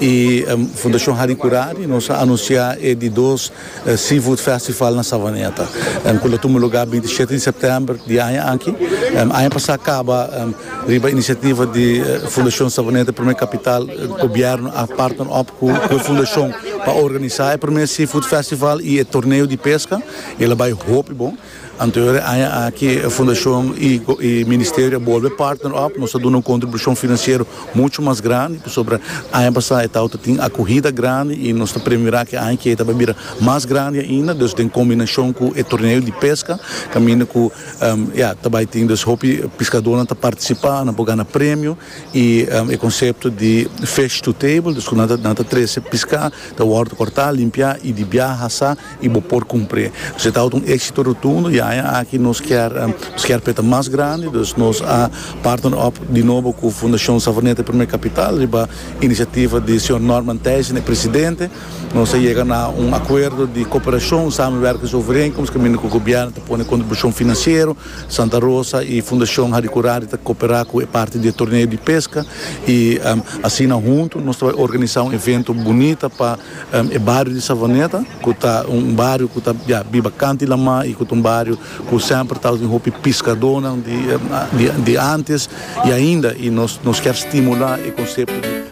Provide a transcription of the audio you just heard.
y Fundacion Harry Curari nos a anuncia e di dos Seafood Festival na Savaneta cu lo tuma lugar binti y siete di September di aña aki. Aña pasa caba riba iniciativa di Fundacion Savaneta Primer Capital Gobierno a partner op cu e Fundacion pa organiza e primer Seafood Festival y e Torneo di Pesca y el a bay hopi bon. Anto e aña aki e fundashon i e ministerio a bolbe partner op, nos ta duna un kontribushon finansiero muchu mas grandi pasobra aña pasá e tawata tin akuhida grandi i nos ta premirá ku e aña ki ei ta bai bira mas grandi ainda, dus den kombinashon ku e torneo di peska kaminda ku ya ta bai tin dus hopi piskadónan ta partisipá, nan por gana premio i e konsepto di fish to table, dus ku nan ta nan ta trese piská ta wòrdu kòrtá, limpiá i di biaha sa. y bo por cumpre. Dus e tabata un exito rotundo y aña aki nos kier nos kier peta mas grandi, dus nos a partner op di nobo cu Fundacion Savoneta Primer Capital riba iniciativa di Señor Norman Thijssen e Presidente. Nos a yega na un acuerdo di cooperacion, samenwerkings overeenkomst, caminda cu Gobierno ta pone contribucion financiero, Santa Rosa y Fundacion Harry Curari ta coopera cu e parti di e torneo di pesca y asina hunto nos ta bay organiza un evento bunita pa. E bario di Savaneta ku ta un bario ku ta ya biba kanti lamá i ku ta un bario ku semper ta ousin hopi piskadonan di antes i ainda i nos nos kier stimulá e konsepto di.